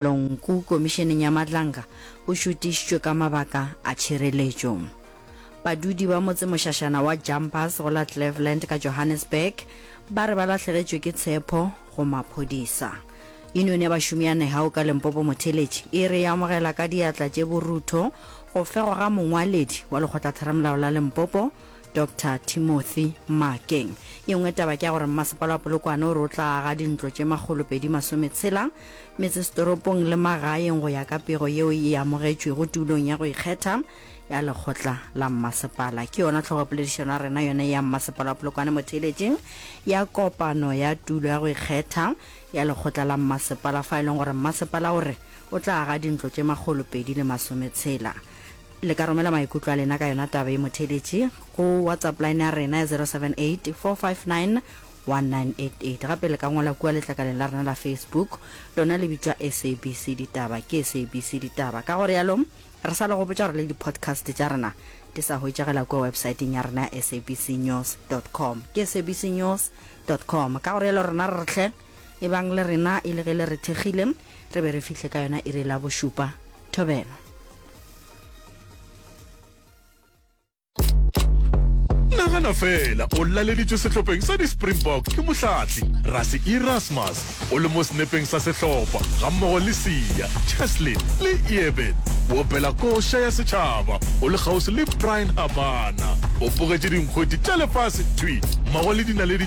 Lonku Komišeneng ya Matlanga o šutišitšwe ka mabaka a tšhireletšo. Badudi ba motsemošašana wa Jumpers go la Cleveland ka Johannesburg ba re ba lahlegetšwe ke tshepho go maphodisa. Yunione ya bašomi ya Nehau ka Limpopo Motheletši e re e amogela ka diatla tše borutho go fegwa ga mongwaledi wa Lekgotlatheramolao la Limpopo, Doctor Timothy Makeng. Ye nngwe taba ke ya gore mmasepala wa Polokwane o re o tla aga dintlo tše makgolopedi masometshela metsesetoropong le magaeng go ya ka pego yeo e amogetšwego tulong ya go ikgetha ya lekgotla la mmasepala. Ke yona tlhogopoledišano ya rena yone ya mmasepala wa Polokwane mo theeletšeng ya kopano ya tulo ya go ikgetha ya lekgotla la mmasepala fa e leng gore mmasepala o re o tla aga dintlo tše makgolopedi le masometshela Le ka romela maikutlo a lena ka yona taba ye motheeletši go WhatsApp line ya rena ya 0784591988. Gape le ka ngwala kua letlakaleng la rena la Facebook, lona le bitšwa SABC Ditaba. Ke SABC Ditaba. Ka go realo, re sa le gopotša gore le di-podcast tša rena di sa hwetšagela kua websaeteng ya rena ya sabcnews dot com. Ke sabcnews dot com. Ka go realo rena re re hle. ebang le rena e le ge le re thekgile re be re fihle ka yona iri la bošupa thobela nagana fela o laleditswe sehlopeng sa di-springbok ke mohlatli rase erasmus o le mo senepeng sa sehlopha gammogo le sia cheslin le eben o opela koša ya setšhaba o le kgauswi le brian habana o pogetše dinkgweti tša lefase thwi mmogo le dinaledi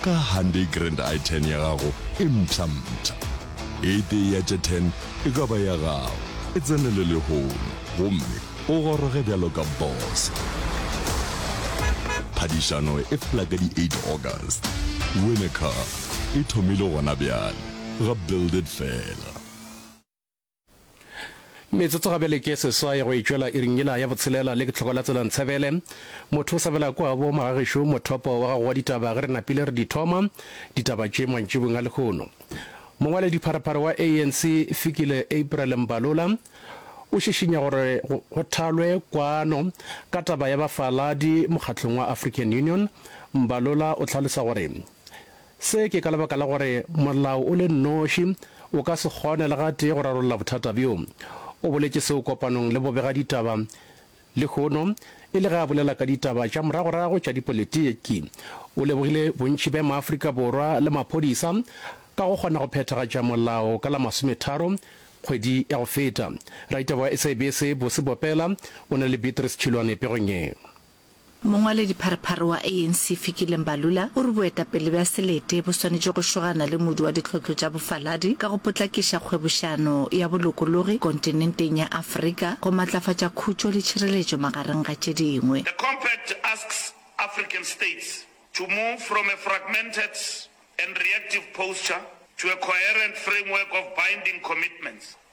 Ka Hyundai Grand i10 ya gago e mpshampsha. E tee ya tše 10 e ka ba ya gago, e tsenele lehono gomme o goroge bjalo ka boss. Phadišano e fela ka di 8 August. Win a Car e thomile gona bjale ga Build It fela. Metsotso ga bjale ke seswai go e tšwela iring yela ya botshelela le ke tlhoko la tsela Ntsebele. Motho o sa bela kwa bo moragešo mothopo wa gago wa ditaba ge re napile re di thoma ditaba tše mantšibong a lehono. Mongwaledi pharephare wa ANC Fikile April Mbalula o šišinya gore go thalwe kwano ka taba ya bafaladi mokgahlong wa African Union. Mbalula o hlalosa gore Se ke ka lebaka la gore molao o le nnoši o ka se kgone le gatee go rarolla bothata bjo. O boletše seo kopanong le bobegaditaba lehono e le ge a bolela ka ditaba tša moragorago tša dipolitiki. O lebogile bontši bja maAfrika Borwa le maphodisa ka go kgona go phethagatša molao ka la masometharo kgwedi ya go feta. Raditaba wa SABC Busi Bopela o na le Beatrice Chilwane pegong ye. Mongwaledipharephare wa ANC Fikile Mbalula o re boetapele bja selete bo swanetše go šogana le modu wa ditlhohlo tša bofaladi ka go potlakiša kgwebošano ya bolokologi kontinenteng ya Afrika go matlafatša khutšo le tšhireletšo magareng ga tše dingwe. The compact asks African states to move from a fragmented and reactive posture to a coherent framework of binding commitments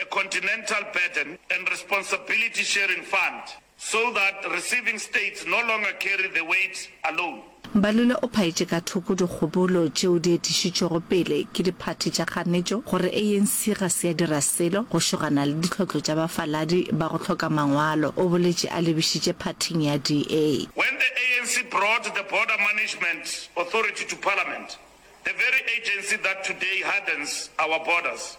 a continental burden and responsibility sharing fund so that receiving states no longer carry the weight alone. Mbalule o phaetše ka thoko dikgobolo tšeo di etišitšwego pele ke diphathi tša kganetšo gore ANC ga se ya dira selo go šogana le ditlhotlo tša bafaladi ba go hloka mangwalo. O boletše a lebišitše phathing ya DA. When the ANC brought the Border Management Authority to Parliament, the very agency that today hardens our borders,